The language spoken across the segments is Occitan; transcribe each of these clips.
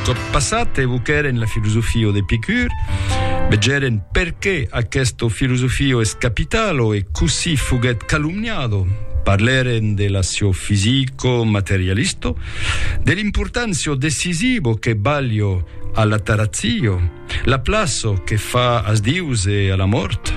tot passat evoquèren la filosofia d'Epicur, vegèren perqué aquesta filosofia es capitalo e cossí foguèt calumniado, parlèren de la sio fisico materialisto, de l'importància decisiva que balio a la tarazio, La plaço que fa as dius e a la mòrt.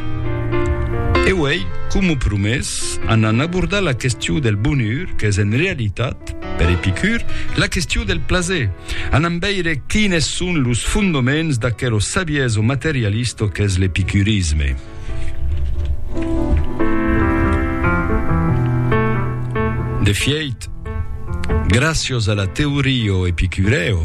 E uèi, coma promés, anam abordar la question del bonur qu'es en realitat, per Epicur, la question del plaser. Anam veire quines son los fondoments d'aquero savieso materialisto qu'es l'epicurisme. De fièit, gràcios a la teorio epicureo,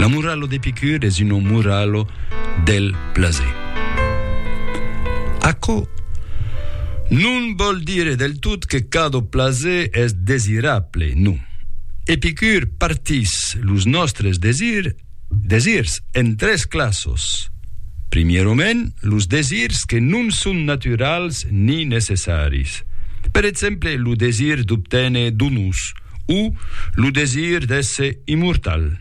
L'amuralo d'Epicur es un amuralo del plaser. Aquò non vòl dire del tot que cada plaser es desirable, non. Epicur partís los nòstres desirs desirs en tres classos. Primierament, los desirs que non son naturals ni necessaris. Per exemple, lo desir d'obténer donus, o lo desir d'èsser immortal.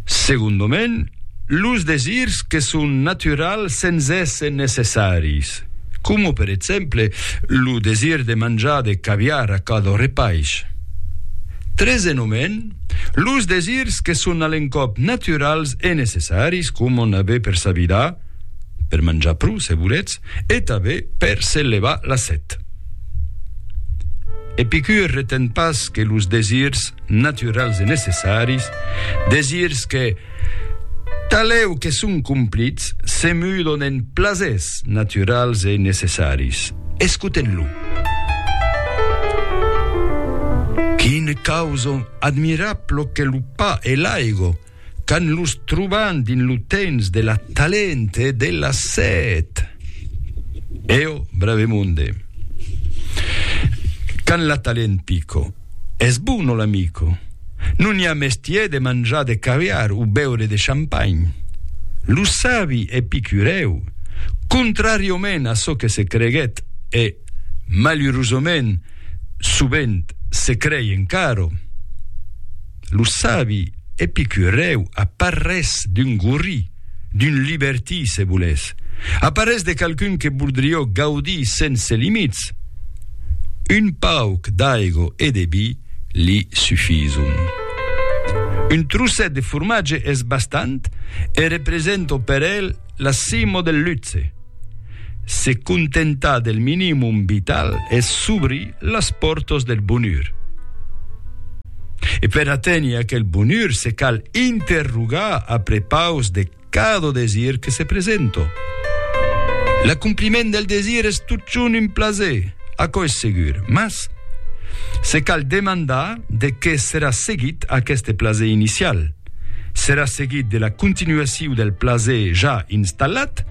Segondament, los desirs que son naturals sens èsser necessaris, coma per exemple lo desir de manjar de caviar a cada repais. Tresenhament, los desirs que son a l'encòp naturals e necessaris, coma n'aver per sa vida, per manjar pro se volètz, e tanben per se levar la set. Epicur reten pas que los desirs naturals e necessaris, desirs que, talèu que son complits, se mudon en plasers naturals e necessaris. Escotem-lo. Quin causon admirablo que lo pa e l'aigo! quand los troban dins lo temps de la talent e de la set. Eo, Bravemonde. Quand la talent pico, es bon o l'amico? Non i a mestier de manjar de caviar o beure de champagn. Lo sabi epicurèu, contrariament a çò que se creguèt e, malurosament, sovent se crei encara, Lo sabi epicurèu a parrés d'un gorri, d'un libertí se volètz, a parrés de qualqu'un que voldrió gaudir sense limits, un pauc d'aigo e de vi li sufison. Un trocet de formatge es bastant e represento per el La cimo del luxe. Se contentar del minimum vital es s'obrir las pòrtas del bonur. E per aténher aquel bonur se cal interrogar a prepaus de cada desir que se presenta. L'acompliment del desir es totjorn un plaser, aquò es segur, mas se cal demandar de qué serà seguit aqueste plaser inicial. Serà seguit de la continuaciu del plaser ja installat,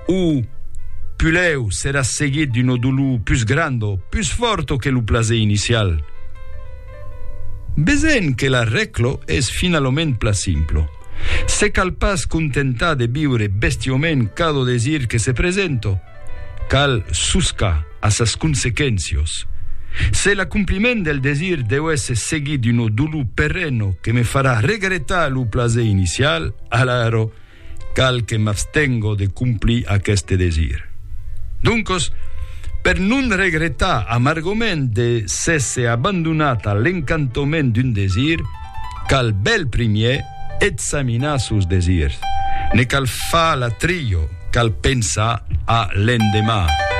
o pulèu serà seguit d'una dolor pus granda o pus fòrta que lo plaser inicial? Vesèm que la rècla es finalament pla simpla. Se cal pas contentar de viure bestiaument cada desir que se presenta, Cal soscar a sas consequéncios. Se l'acompliment del desir deu èsser seguit d'una dolor perena que me farà regretar lo plaser inicial, alara, cal que m'abstenga de complir aqueste desir. Doncas, per non regretar amargament de s'èsser abandonat a l'encantament d'un desir, cal bèl primièr Examinar sos desirs. Ne cal far l'atrilho, cal pensar a l'endemà.